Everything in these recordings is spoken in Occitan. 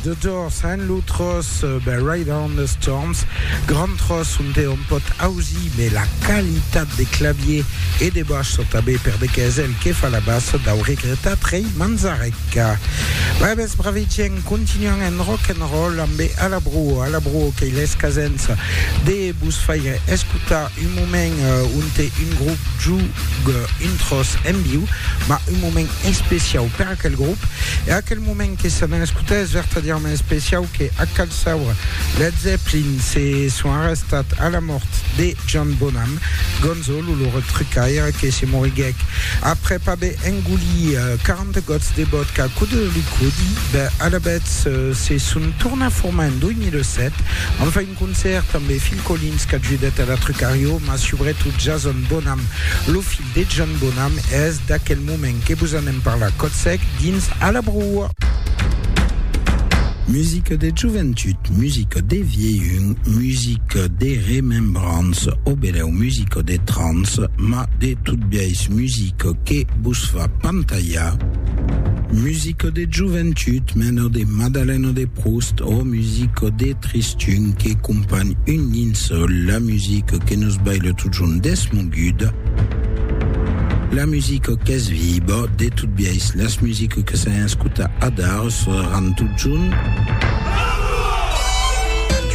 The Doors and lo tros ben Ride on the Storms grand tros on te on pot ausi mais la qualitat de clavier et de baix sont abé per de quezel que fa la basse dau regreta trei manzarec ben bes bravigien continuant en rock and roll ambé a la bruo a la bruo que il es casens de bus faire escutar un moment on te un groupe jou un tros en viu ma un moment especiau per aquel grop e aquel moment que se n'escota es vertadièrament especiau que a cal saure Led Zeppelin se son arrestat a la mòrt de John Bonham Gonzolo lo retrucaire que se moriguèc aprèp aver engolit 40 gots de vodka cò de liquòdi ben alavetz se son tornat formar en 2007 an fai un concèrt ambe Phil Collins qu'ajudèt a la trucar jo mas subretot Jason Bonham lo filh de John Bonham es D'aquel moment que vos anem parlar còth sec dins A la broa. Musica de joventut, musica de vielhun, musica de remembrança o belèu musica de trans, ma de tot biais musica que vos fa pantalhar. Musica de joventut, mena de Madalena de Proust o musica de tristun que companh un linçòl, la musica que nos baila totjorn deth mon. Gud. La musica qu'es viba, de tot biais las musica que s'an escuta adar sonaran totjorn.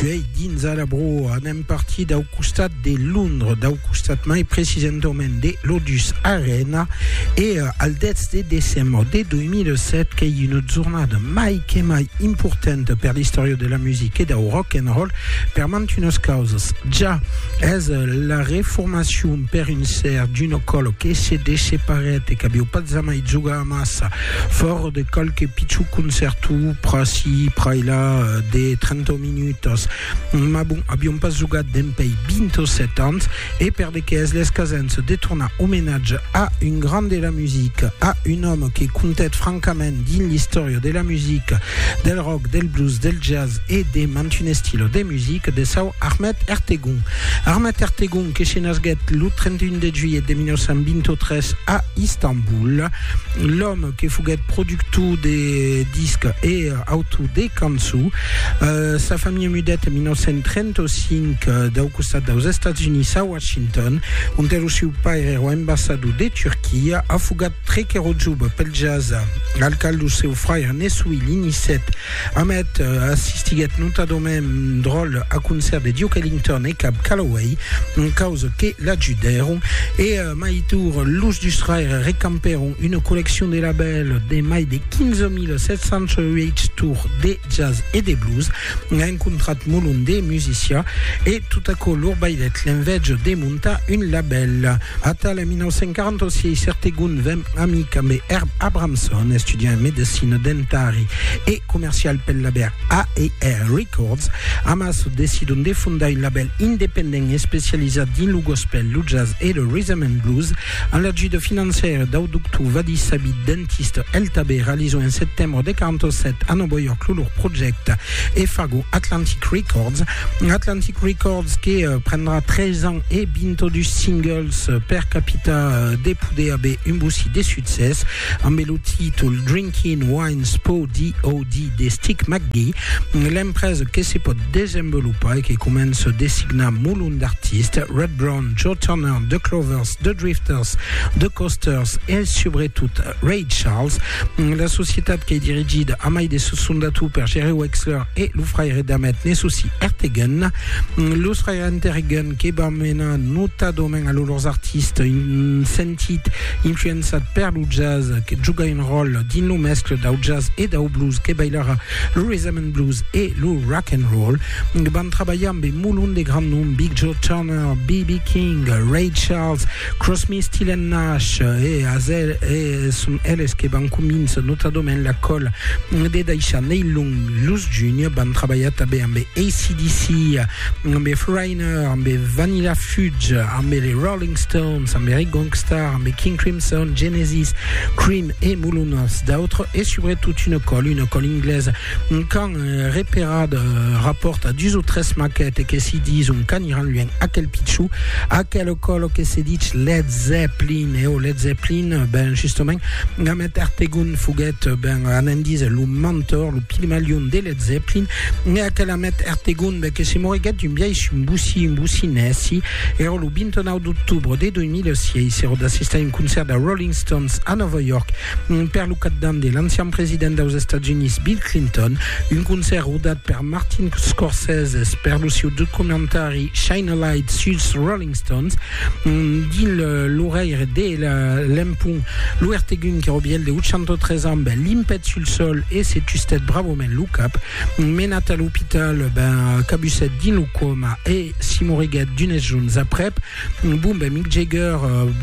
Tuei dins a la broa, anem partir dau costat de Londres, dau costat mai precisentament de l'Odus Arena e al 10 de decembre de 2007 qu'ei una jornada mai que mai importanta per l'istòria de la musica e dau rock and roll per mantunas causas. Ja Es la reformacion per un ser d'una còlo que se desseparèt e qu'aviu pas jamai jogar amassa, fòra de qualque pichon concèrto pr'ací pr'ailà de 30 minutas. Mas bon, avion pas jogat dempèi 27 ans e per de qué es l'escasença de tornar omenatge a un grand de la musica, a un òme que comptèt francament dins l'istòria de la musica, del rock, del blues, del jazz e de mantun estilo de musica. music de çò Ahmet Ertegun. Ahmet Ertegun que se nasguèt lo 31 de juilhet de 1923 a Istanbul, l'òme que foguèt productor de disc e autor de cançó. Euh, sa familha mudèt en 1935 euh, dau costat daus Estats Units a Washington, ont lo seu paire èra ambassador de Turquia, afogat tre qu'èra jove pel jazz, al cal lo seu fraire ne soï l'inicèt. Hammett assistiguèt notadament un dròlle a concèrt de Duke Ellington e Cab Calloway, un causa que l'ajudèron, e mai tour los dus fraires recampèron una colleccion de labèls de mai de 15.708 tours de jazz e de blues, un contrat molon de musicià, e tot aquò lor baidèt l'envèja de montar un labèl. Atal en 1946, Ertegun ven amic ambe Herb Abramson, estudiant en medecina dens proprietari e comercial pel labèl AER Records, Amas decidon de fondar un labèl independent especializat dins lo gospèl, lo jazz e lo rhythm and blues. Amb l'ajuda financièra dau doctor Vadi Sabit, dentista, el tabè realizon en setembre de 47 a Nòva York lo lor projècte e fagon Atlantic Records. Atlantic Records que prendrà 3 ans e 22 singles per capita de poder aver un bocí de succès. Ambe lo títol Drinkin' Wines Po Di O Di de Stick McGee, l'empresa que se pòt desenvolopar e que comença designar molon d'artistes, Rod Brown, Joe Turner, The Clovers, The Drifters, The Coasters e subretot Ray Charles. La societat qu'ei dirigida a mai de sos fondator per Jerry Wexler e lo fraire d'Ahmet Nesusi Ertegun. Los fraires Ertegun que van menar notadament a lo lors artistes un sentit Influençat per lo jazz, que juga un ròl dins lo mescle dau jazz e dau blues que bailarà lo rhythm and blues e lo rock and roll, van trabalhar ambe molon de grand nom, Big Joe Turner, BB King, Ray Charles, Crosmy, Still and Nash e Hazel e son eles que van convincer notadament la còla de daishar Neil Long. Los Junior van trabalhar tanben ambe ACDC, ambe Fluorine, Dinner ambe Vanilla Fudge, ambe les Rolling Stones, ambe Eric Gongstar, ambe King Crimson, Genesis, Cream e mulunas d'autres, e subretot una còl, una còl inglaise, un can eh, reperat eh, rapòrta dus o tres maquetes que si dis un can iran luènh aquel pichou, aquela còl que se dich Led Zeppelin, e o Led Zeppelin, ben justement, Ahmet Ertegun foguèt, ben, anèn díser, lo mentor, lo pigmalion de Led Zeppelin, e aquela met Ertegunde que se moriguèt un biais un bocí, un bocí nèci, èra lo 29 d'octobre de 2006, èra d'assistar un concèrt de Rolling Stones a Nòva York per lo capdant de l'ancian president daus Estats Units Bill Clinton, un concèrt rodat per Martin Scorsese per lo siu documentari Shine a Light suls Rolling Stones. Dins lo reire de l'empont, lo ertegun que robièl de 803 ans ben limpèt sul sol e se tustèt bravament lo cap. Menat a l'opital, ben cabusèt dins lo coma e s'i moriguèt d'unes jorns aprèp. Bon, ben Mick Jagger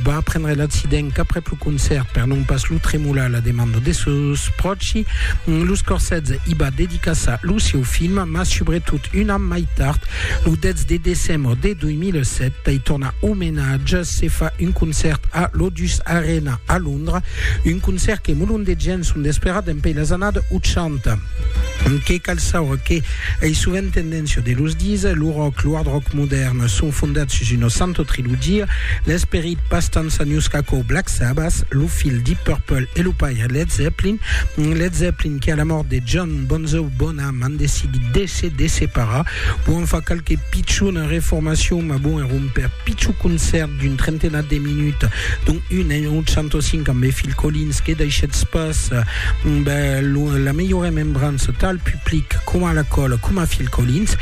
va aprendre l'accident qu'aprèp lo concèrt, per non pas lo tremolar a la demanda de sos pròchi, los Corsets i va dedicassar lo sieu film, mas subretot un an mai tard, lo 10 de decembre de 2000, 2007 pei tornar omenatge se fa un concèrt a l'Odus Arena a Londra, un concèrt que molon de gents son d'esperar dempei las annadas 80. Que cal saure que ei sovent tendéncia de los dire, lo rock, lo hard rock modèrn son fondats sus una santa trilogia, l'esperit pas tant sanius qu'aquò Black Sabbath, lo filh Deep Purple e lo paire Led Zeppelin, Led Zeppelin que a la mòrt de John Bonzo Bonham, M'an decidit de se desseparar. Bon, en fa qualque pichona reformacion, mas bon, èra un per pichon concèrt d'un trentenat de minuts, dont un en 805 ambe Phil Collins, que daishètz pas la melhor remembrança tal public coma la còla coma Phil Collins.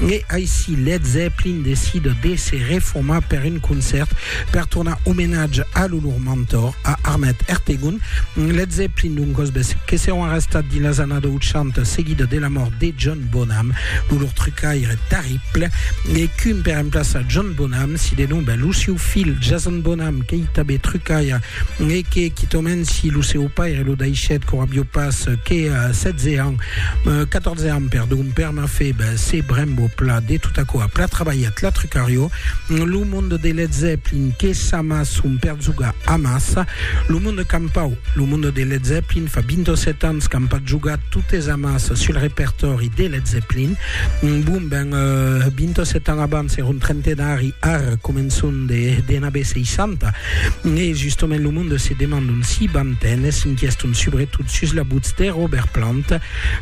E aicí Led Zeppelin decida de se reformar per un concèrt Per tornar omenatge a lo lor mentor, a Armet Ertegun, Led Zeppelin d'un cosbès que serón arrestat dins las annadas 80 seguida de la mòrt de John Bonham, lo lor trucaire terrible e qu'un per emplaçar John Bonham si denomba lo siu fil Jason Bonham qu'ei tabé trucaire e que quitòment si lo seu paire lo daishèt quora avió pas que 16 ans, 14 ans perdon, per mafeba se brembo pla de tot aquò a pla trabalhat la trucarió. Lo monde de Led Zeppelin que sa mas son perzuga amassa lo monde campau. Lo monde de Led Zeppelin fa 27 ans qu'an pas jogat totes amas sul repertòri de Led Zeppelin. Bon ben, 27 ans abans era un trentenari, ar començon de d'anabé 60. E justament lo monde se demandon si van ten, s'inquieston subretot sus la butz de Robert Plant.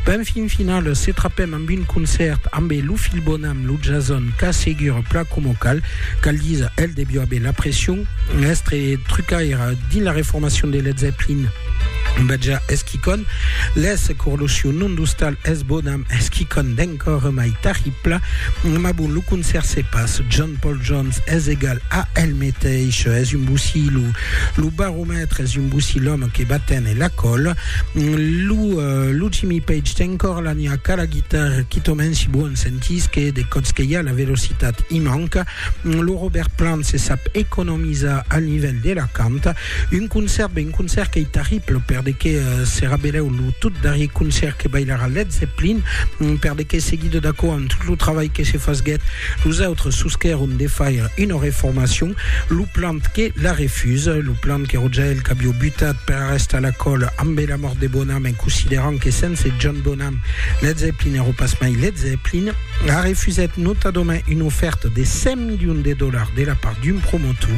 Ben fin final se trapèm Amb un concèrt ambe lo Fil Bonam, lo Jason qu'a segur plan coma cal, cal díser, el devió aver la pression, èstre trucaire dins la reformacion de Led Zeppelin, Baja es quicòn, les corlosion non d'ostal es Bonam es quicòn d'encore mai tarripla, ma bon lo concèrt se pas John Paul Jones es egal a el meteish, es un bossí lo, lo baró. Lo maitre es un boussi l'òme que va téner la còl. Lo, lo Jimmy Page ten encòra la niaca, la guitarra, quitament si vos en sentís que de còps que i a la velocitat i manca. Lo Robert Plant se sap economizar al nivèl de la canta. Un concèrt, ben un concèrt qu'ei terrible per de que serà belèu lo tot darrier concèrt que bailarà Led Zeppelin, per de que seguido d'aquò amb tot lo trabalh que se fasguèt, los autres sosquèron de faire una reformacion. Lo plan que la refusa, lo plan que Rogèl qu'avió butat per arrestar la còla ambe la mòrt de Bonham en considerant que sense John Bonham, Led Zeppelin èro pas mai Led Zeppelin, a refusèt notadament una ofèrta de 100 milions de dolars de la part d'un promotor.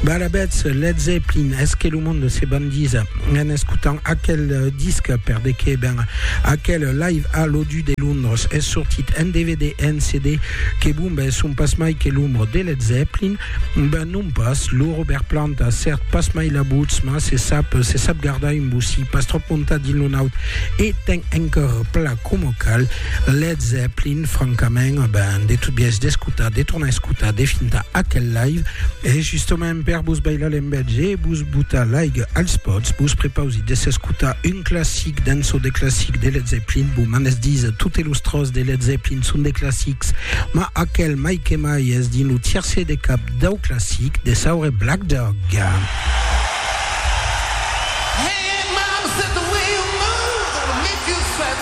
Balabètz, Led Zeppelin, es que lo monde se bandisa en escotant aquel disc per de qué? Ben, aquel Live a l'O2 de Londres es sortit en dvd e en CD Que bombes son pas mai que l'ombra de Led Zeppelin? Ben non pas, lo Robert Plant a cèrt pas mai la votz, mas se sap, se sap gardar un bocí pas tròp montat dins lo naut e ten un còr pla coma cal. Led Zeppelin, francament, ben, de tot biais d'escotar, de tornar a escotar, de fintar aquel live, e justament, Per vos bailar l'enveja e vos botar l'aiga als pòts, vos prepausi de s'escotar un classic d'un çò de classic de Led Zeppelin. Bon, m'an es dits totes los tròç de Led Zeppelin son de classics, ma aquel mai que mai es dins lo tiercer de cap dau classic de saure Black Dog.